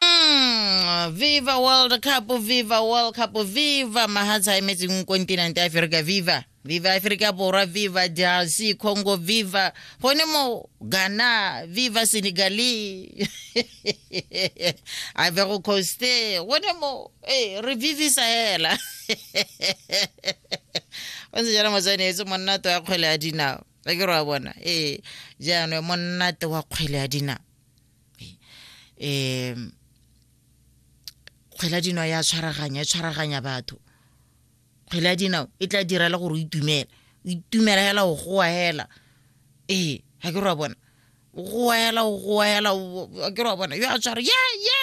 Mm, viva world cup viva world cup viva mahatsa e metseng kontinent ya aferika viva viva aferika borwa viva drc congo viva gone mo ghana viva senegale ivory coast gone mo e re vivisa hela o ntse jalo motsanetse monnato wa kgwele ya dinao a ke re wa bona ee jaanong monnato wa kgwele ya dinao um kgwela dinao ya tshwaraganya e tshwaraganya batho kgwela dinao e tla dira le gore o itumela o itumela hela o goa hela ee ga ke re wa bona o goa hela o goa hela ga ke re wa bona yo a tshwara ye ye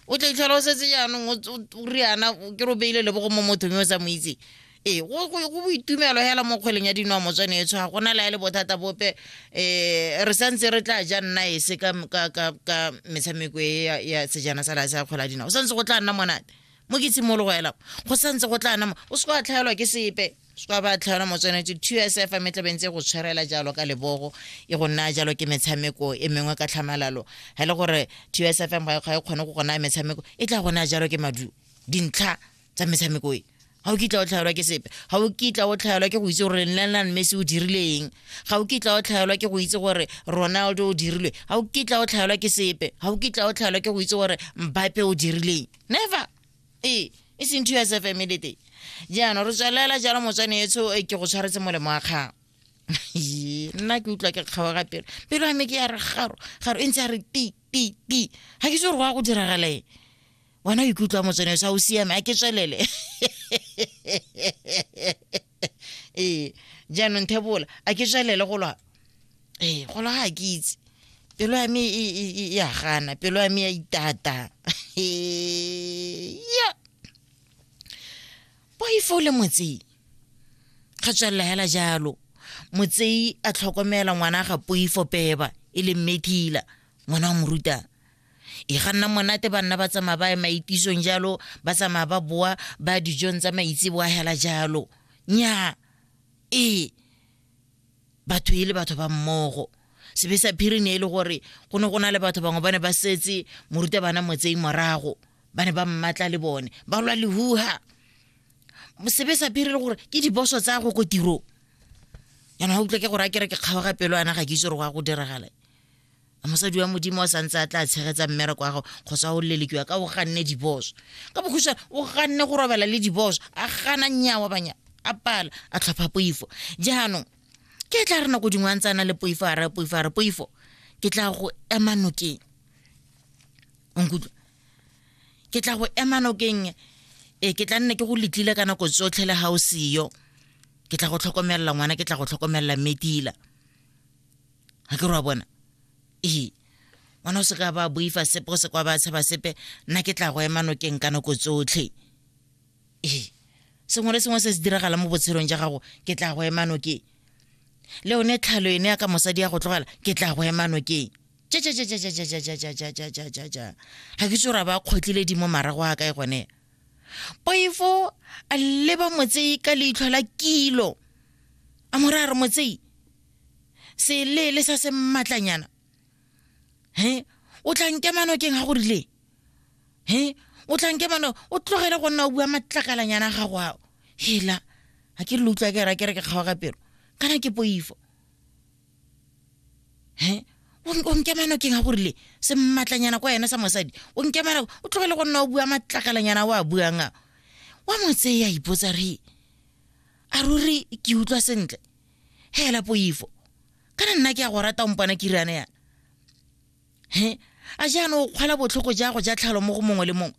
o tla itlhola o setse jaanong o riana ke re o beile lebogo mo mothong yo o sa mo itseng ee go go- go boitumelo hela mo kgweleng ya dinoa motswane etsho ga gona laele bothata bope um re santse re tla ja nna ese ka ka- ka- ka metshameko e ya- ya sejana sa lase ya kgwele ya dinao go santse go tla nna monate mo ke tshimologo hela go santse go tla nna mo- o se ka tlhaelwa ke sepe se ka ba tlhaelwa motswanetse two s f me tlabeng tse go tshwarela jalo ka lebogo e go naya jalo ke metshameko e mengwe ka tlhamalalo ga e le gore two s f m ga e ga e kgone go go naya metshameko e tla go naya jalo ke maduo dintlha tsa metshameko e ga o kitla o tlhaelwa ke sepe ga o kitla o tlhaelwa ke go itse gore lionel messi o dirileng ga o kitla o tlhaelwa ke go itse gore ronaldo o dirilwe ga o kitla o tlhaelwa ke sepe ga o kitla o tlhaelwa ke go itse gore mbape o dirileng never ee e seng two sf emelete jaanong re tswelela jalo motswane etsho e ke go tshwaretse molemo wa kgang nna ke utlwa ke kgawa ga pelo pelo ame ke ya re garo garo e ntse ya re ti ti ti ga ke se gore go ya go diragalaeng wena o ikutlwa motsene sa o siame a ke tswelele ee jaanong thebola a ke tswelele go lwa ee go lwa ga ke itse pelo ya me e, e, e, ya gana pelo ya me ya itata ya boifo le motsei ga tswelela hela jalo motsei a tlhokomela ngwana ga poifo peba e leng methila ngwana wa morutana e ga nna monate banna ba tsamaya ba ya maitisong jalo ba tsamaya ba boa ba dijong tsa maitse boa hela jalo nya ee batho e le batho ba mmogo sebe sa phiri ne e le gore go ne go na le batho bangwe ba ne ba setse moruta bana motsei morago ba ne ba mmatla le bone ba lwa lehuha sebe sa phiri le gore ke diboso tsa go ko tirong yana ga utlwa ke gore a kere ke kgaoga pelo ana ga ke itse gore go ya go diragala mosadi wa modimo o santse a tla tshegetsa mmereko wa gago kgotsa o lelekiwa ka o ganne diboso ka bokhusa o ganne go robala le diboso a gana nyawa banya a pala a tlhopha poifo jaanong ke tla re nako dingwe a ntse a na le poifo a raya poifo a re poifo ke tla go ema nokeng onkutlwa ke tla go ema nokeng ee ke tla nne ke go letlile ka nako tsotlhe le ga o seyo ke tla go tlhokomelela ngwana ke tla go tlhokomelela metila ga ke rwa bona ee ngwana o se ka ba boifa sepe o se kwa ba tshaba sepe nna ke tla go ema nokeng ka nako tsotlhe ee sengwe le sengwe se se diragala mo botshelong ja gago ke tla go ema nokeng le one tlhalo ene ya ka mosadi ya go tlogela ke tla go ema nokeng ga ke tso ra ba kgotlile di mo marago a kae gone poifo a leba motsei ka leitlho la kilo a morare motsei seleele sa se mmatlanyana he o tla nkema nokeng ga go rile he o tla nkema no o tlogele go nna o bua matlakalanyana a gago ao hela ga ke le utlwa ke ra ke re ke kgaoga pelo kana ke poifo he o nkema nokeng ga go rile se mmatlanyana kwa ene sa mosadi o nkema nako o tlogele go nna o bua matlakalanyana o a buang a wa mo tseye a ipotsa re a ruri ke utlwa sentle hela poifo kana nna ke a go rata ompana ke riana yana he a jaana o kgwala botlhoko jago ja tlhalo mo go mongwe le mongwe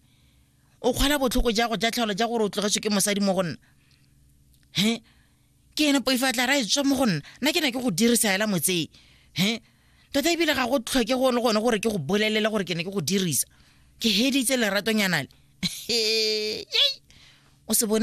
o kgwala botlhoko jago ja tlhalo ja gore o tlogetswe ke mosadi mo go nna he ke ene poifo a tla ra e tswa mo go nna nna ke ne ke go dirisa hela motsei he tota ebile ga go tlhoke go le gone gore ke go bolelele gore ke ne ke go dirisa ke heditse leratonyana le o se bone